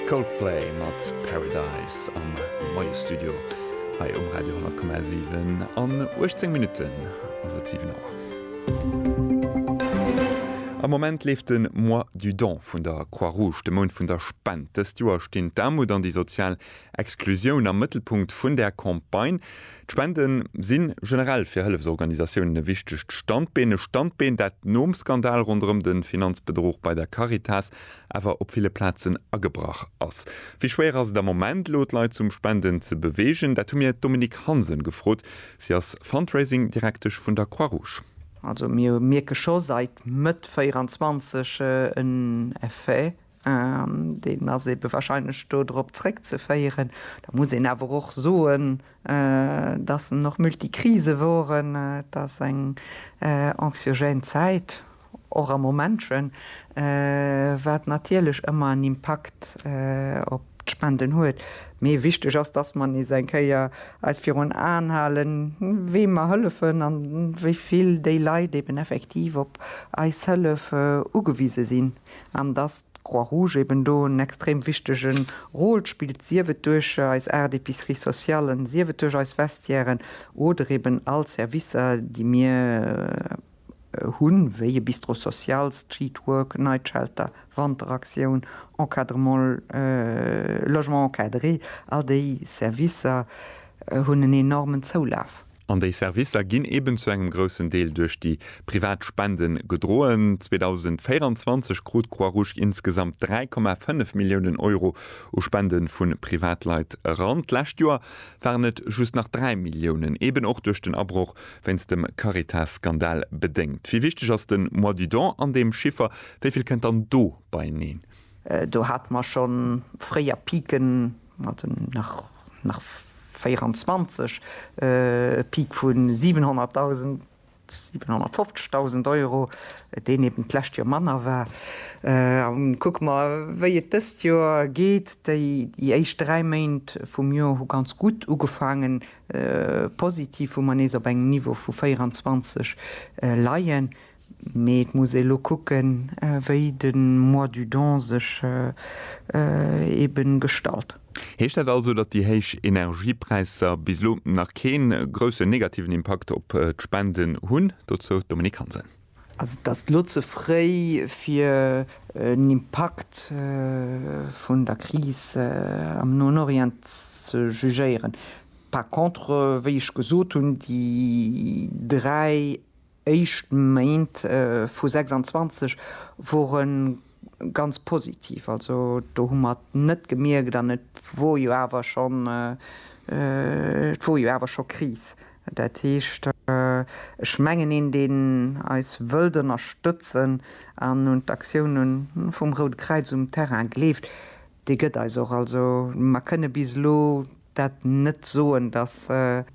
Coldplay mat Paradise am Moie Studio hei um Radio 10,7. An 18 Minutten ass et 7 Auer. Am Moment leeft de Mois du don vun der Croix-Rouge, de Mount vun der Spent. Dëst Joer stinn d'Aarmut an déi sozial Exklusioun am Mëttelpunkt vun der Campagne. D'Spende si generell fir Hëllefsorganisatiounen e wichtegt Standbeen. E Standbeen, dat nom Skandal ronderëm de Finanzbedruch bei der Caritas awer op ville Plazen agebrach ass. Wéi schwéier ass et am Moment, elo d'Leit zum Spenden ze beweegen? Dat hu mir d'Dominique Hansen gefrot. Si ass Fundraising-Direktesch vun der Croix-Rouge. Also mir mierke scho säit Mëtt 24 en Effet Deen ass ebe wahrscheinlech do drop zréckzeféieren. Da muss een awer och soen, dass en och Multikrise wor. Et ass eng anxiogène Zäit, och am Momentchen, wat natierlech ëmmer en Impakt op d'Spenden huet. Mee wichteg ass, dass mer nees eng Kéier eis virun Aen halen, weem mer hëllefen a wéi vill déi Leit eben effektiv op eis Hëllef ugewise sinn. An dass d'Croix-Rouge eben do en extrem wichtege Rôle spillt, sief et duerch eis aacht Epiceries sociales, sief et duerch eis Vestiairen oder eben all Servicer, déi mir hunn, wéi e Bistro social, Street Work, Night Shelter, Wanteraktioun, Encadrement, Logement encadré, all déi Servicer hunn en enormen Zoulaf. An déi Servicer ginn eben zu engem groussen Deel duerch déi privat Spende gedroen. 2024 krut d'Croix-Rouge insgesamt 3,5 Milliounen Euro u Spende vu Privatleit eran. D'lescht Joer waren et just nach 3 Milliounen, eben och duerch den Abroch wéinst dem Caritas-Skandal bedéngt. Wéi wichteg ass de Mois du don an deem Chiffer? Wéi vill kënnt dann do beieneen? Do hate mer scho fréier Piken Mir haten nach 24 e Peak vu 700.000, 750.000 Euro, deen eben d'lescht Joer manner war. Kucke mer, wéi et dëst Joer geet. Déi éischt dräi Méint vum Joer hu ganz gutt ugefaangen, positiv, wou mer nees op engem Niveau vu 24 leien. Mee et muss ee lo kucken, wéi de Mois du Don sech ebe gestalt. Heescht dat also, datt déi héich Energiepräisser bis elo nach kee groussen negativen Impakt op d'Spenden hunn? Dozou d'Dominique Hansen. Also et ass lo ze fréi fir en Impakt vun der Kris am Noen Orient ze jugéieren. Par contre, wéi ech gesot hunn, déi dräi éischt Méint vu 26 wore ganz positiv. Also do hu mer et net gemierkt an et wor jo awer schonn, et wor jo awer scho Kris. Dat heescht, ech mengen, een deen eis wëllt ënnerstëtzen an un d'Aktiounen vum Route Kräiz um Terrain gleeft, Dee gëtt eis och. Also mer kënne bis elo dat net soen, datt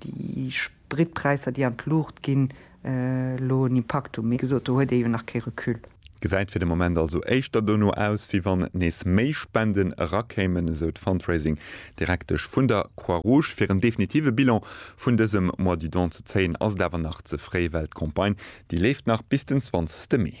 déi Spritpräisser, déi an d'Luucht ginn, elo en Impakt hunn. Mee wéi gesot, do huet ee jo nach kee Recul. Gesäit fir de Moment also éischter dono aus, wéi wann nees méi Spenden erakéimen, esou d'Fundraising Direktesch vun der Croix-Rouge. Fir en definitive Bilan vun dësem Mois du Don ze zéien, ass et awer nach ze fréi, well d'Campagne, déi leeft nach bis den 20 Mee.